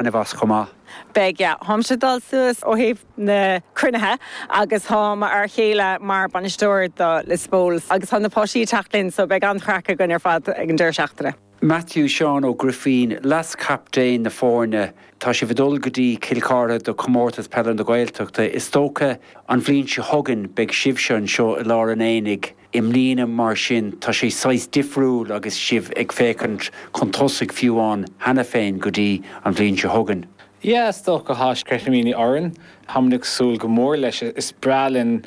an bhus chomh maith. Beidh, táimse ag dul suas ó thaobh na cruinnithe agus tá m'fhear chéile mar bainisteoir do Lios Póil agus tá na páistí ag teacht linn so beidh an-chraic againn ar fad ag an deireadh seachtaine. Matthew Seán Ó Grifín, leaschaptaen na foirne, Tá sibh ag dul go dtí Cill Charthaigh do Comórtas Peile na Gaeltachta. Is dócha an bhliain seo chugainn beidh sibhse anseo i lár an aonaigh. I mbliana mar sin tá sé saghas difriúil agus sibh ag féachaint chun tosaigh fiú amháin cheana féin go dtí an bhliain seo chugainn. Yeah, is dócha tá sceitimíní orainn. Táimid ag súil go mór leis. Is breá linn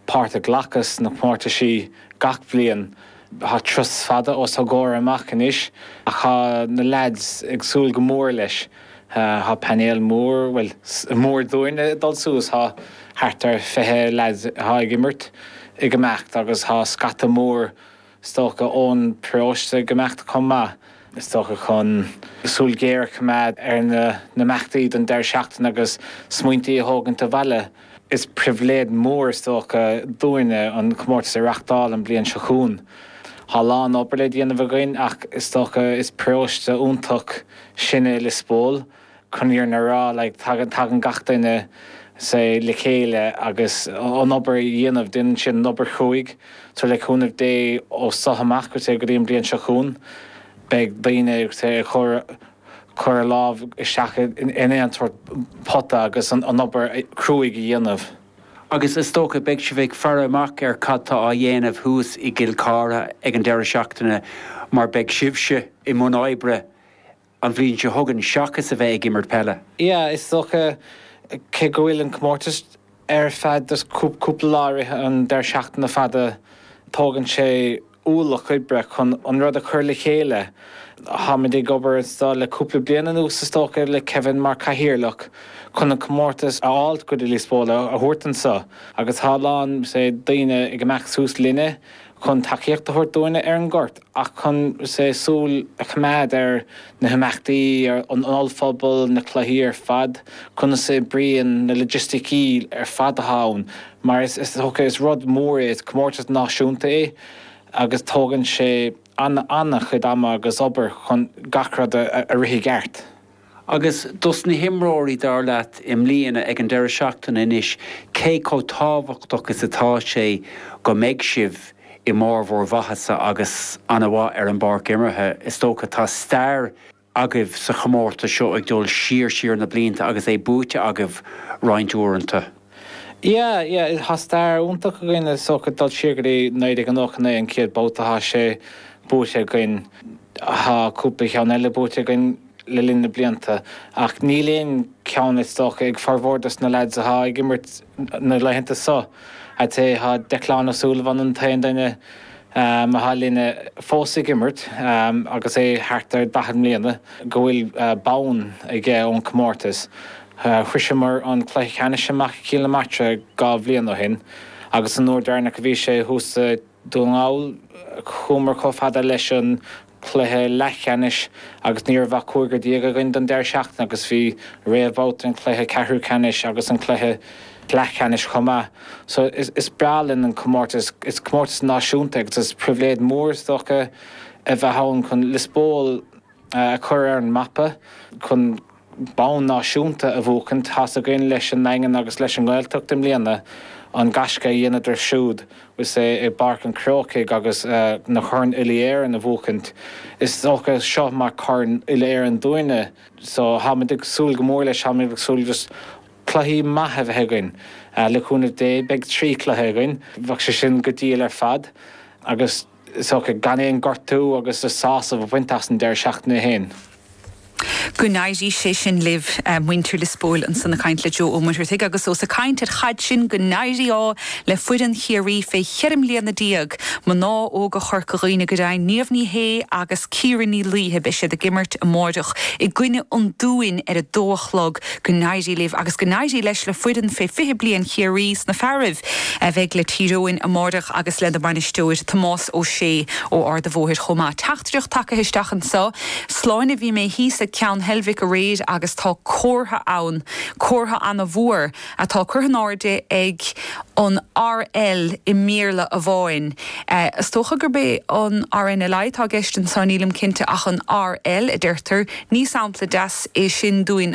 páirt a ghlacadh sna comórtaisí gach bliain. Tá turas fada os ár gcomhair amach anois ach tá na leaids ag súil go mór leis. Tá painéal mór, bhuel, mór dúinne ag dul suas, tá thart ar 20 leaid atá ag imirt ag imeacht agus tá scata mór is dócha ón bparóiste ag imeacht chomh maith, is dócha chun súil ghéar a choimeád ar na n-imeachtaí don deireadh seachtaine agus smaointí a thógaint abhaile. Is pribhléid mhór is dócha dúinne an comórtas a reachtáil an bhliain seo chugainn. Tá lán obair le déanamh againn ach is dócha is paróiste iontach sinn i Lios Póil, chun an fhírinne a rá like tagann gach duine le chéile agus an obair a dhéanamh, déanann siad an obair chruaidh so le cúnamh Dé ó so amach go dtí an bhliain seo chugainn beidh daoine ag cur cur a lámha isteach in aon sórt pota agus an obair chruaidh a dhéanamh. Agus is dócha beidh sibh ag faire amach ar cad tá á dhéanamh thuas i gCill Charthaigh ag an deireadh seachtaine mar beidh sibhse i mbun oibre an bhliain seo chugainn seachas a bheith ag imirt peile. Yeah is dócha cé go bhfuil an comórtas. Ar feadh cúpla lá i rith an deireadh seachtaine fada tógann sé ualach oibre chun an rud a chur le chéile. Táimid ag obair anseo le cúpla bliain anuas is dócha, le Kevin mar chathaoirleach, chun an comórtas a fháilt go dtí Lios Póil a thabhairt anseo agus tá a lán daoine ag imeacht suas linne, chun tacaíocht a thabhairt dúinne ar an ngort ach chun súil a choimeád ar na himeachtaí, ar an ollphuball, na cluichí ar fad, conas a oibríonn na loigisticí ar fad atá ann mar is rud mór é, is comórtas náisiúnta é agus tógann sé an-chuid ama agus obair chun gach rud a rith i gceart. Agus dos na himreoirí, dar leat, i mbliana, ag an deireadh seachtaine anois, cé chomh tábhachtach is atá sé go mbeidh sibh i mbarr bhur maitheasa agus ana-mhaith ar an bpáirc imeartha? Is dócha, tá stair agaibh sa chomórtas seo ag dul siar siar na blianta agus é buaite agaibh roinnt uaireanta. Yeah, yeah, tá stair iontach againn is dócha dul siar go dtí 1989 an chéad babhta a thá sé buaite againn, thá cúpla ceann eile buaite againn le linn na blianta ach níl aon ceann is dócha ag formhór dos na leaids a thá ag imirt na laethanta so, até thá Declan Ó Súilleabháin an t-aon duine a thá linne fós ag imirt, agus é thart ar 40 mbliana, go bhfuil bonn aige ón comórtas. Shroiseamar an cluiche ceannais amach i gCill na Martra dhá bhliain ó shin agus an uair deireanach a bhí sé thuas i nDún na nGall chuamar chomh fada leis an cluiche leathcheannais agus ní raibh ach cúigear déag againn don deireadh seachtaine agus bhí réamhbhabhta an cluiche ceathrú ceannais agus an chluiche leathcheannais chomh maith so is breá linn an comórtas, is comórtas náisiúnta é agus is pribhléid mhór is dócha a bheith ann chun Liospóil a chur ar an mapa, chun. bonn náisiúnta a bhuacaint. Tá's againn leis an nDaingean agus leis an nGaeltacht i mbliana an gaisce a dheineadar siúd i bPáirc an Chrócaigh agus na coirn Uile-Éireann a bhuacaint. Is dócha seo mar corn Uile-Éireann dúinne so táimid ag súil go mór leis. Táimid ag súil just cluichí maith a bheith againn. Le cúnamh Dé beidh trí chluiche againn. Bheadh sé sin go diail ar fad agus. is dócha, gan aon ghortú agus le sásamh a bhaint as an deireadh seachtaine féin. Go n-éirí sé sin libh, muintir Liospóil, ansan ag caint le Joe Ó Muircheartaigh agus ós ag caint ar chaid sinn go n-éirí ádh le foireann Chiarraí fé cheithre mbliana déag, mná óga Chorca Dhuibhne go deimhin, Niamh Ní Shé agus Ciara Ní Laoithe. Beidh siad ag imirt amáireach i gcoinne an Dúin ar a dó a chlog. Go n-éirí libh agus go n-éirí leis le foireann Fé 20 Bliain Chiarraí sna fearaibh a bheidh le Tír Eoghain amáireach agus lena mbainisteoir Tomás Ó Sé ó Ard an Bhóthair chomh maith. Teachtaireacht tagaithe isteach anseo. Sláine Bhí mé thíos ag Ceann Heilbhic aréir agus tá comhartha ann, comhartha ana mhór atá curtha in airde ag an RL i mBéarla amháin. Is dócha gurb é an RNLI atá i gceist anseo, nílim cinnte, ach an RL a deirtear. Ní sampla deas é sin dúinn.